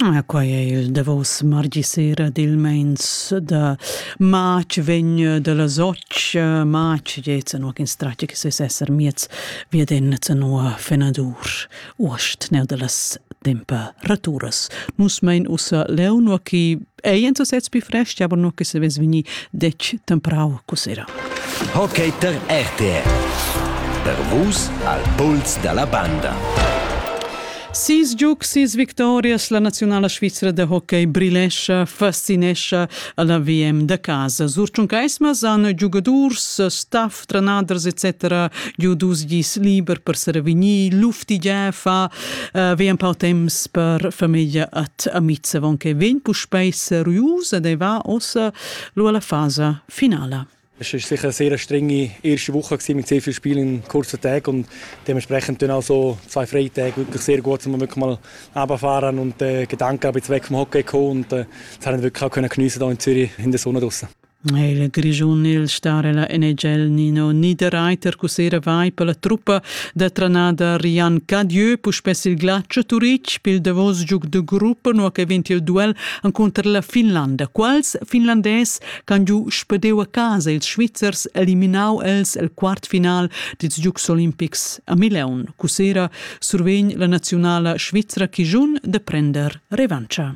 Ah, quai è il davos mardi sera dil meins da matg vegn da las och matg jetzt no in stracce che ses esser miez via den zanoa fenadur uost ne da las temperaturas nus mein ussa leon ki ei en sesez più fresti, aber nur che se ves veni dec temprau cosera. Hockey per RTR. Per vus al puls della banda. Sis giugs, sis victorias, la nazionala svizra de hockey brilescha, fascinescha alla VM de casa. Sur Tschuncaismas han giugadurs, staff stranaders etc. giu dus gis liber per servegnir luftigia fa uh, vegn pau temps per famiglia at amiz avon che vegn puspei seriusa dei va ossa lu alla fasa finala. Es war sicher eine sehr strenge erste Woche mit sehr vielen Spielen in kurzen Tagen und dementsprechend dann also zwei freie Tage wirklich sehr gut, um wirklich mal runterfahren und äh, Gedanken ein bisschen weg vom Hockey gekommen und äh, das haben wir wirklich auch können geniessen hier in Zürich in der Sonne draußen. Il Grischun il star ella NHL Nino Niederreiter cussera vai per la truppa da tranada Rian Cadieu puspè il Glatsch Turitg pel davos giug de gruppa no che vint il duel encunter la Finlanda. Quals finlandés can giu spedeu a casa ils Svizzers eliminau els el quartfinal dils giugs olimpics a Milaun. Cussera survegn la nazionala svizra Kijun de prender revancha.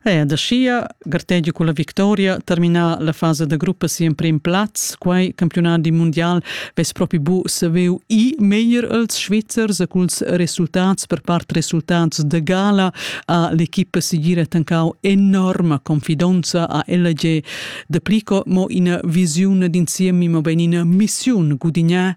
Ea, da schia gartegia con la victoria terminar la fasa da gruppa si emprim plaz, quai campionadi mundial vess propi bu saveu i meglier als Svizzers e culs resultats per part resultats de gala a l'equipa sigira tancau enorma confidonza a LG de Plico mo ina visione d'insiemi, ma ben ina missiun gudignà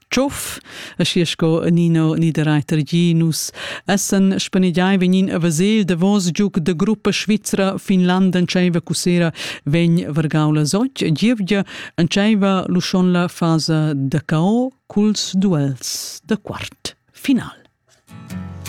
tschuf e schi sco Nino Niederreiter gi nus essen spanegiai vegnin a Vasel davos giuc de gruppa Svizra Finland entscheiva cussera vegn vargaula soc gievgia entscheiva luschonla fasa da cao culs duels de quart final.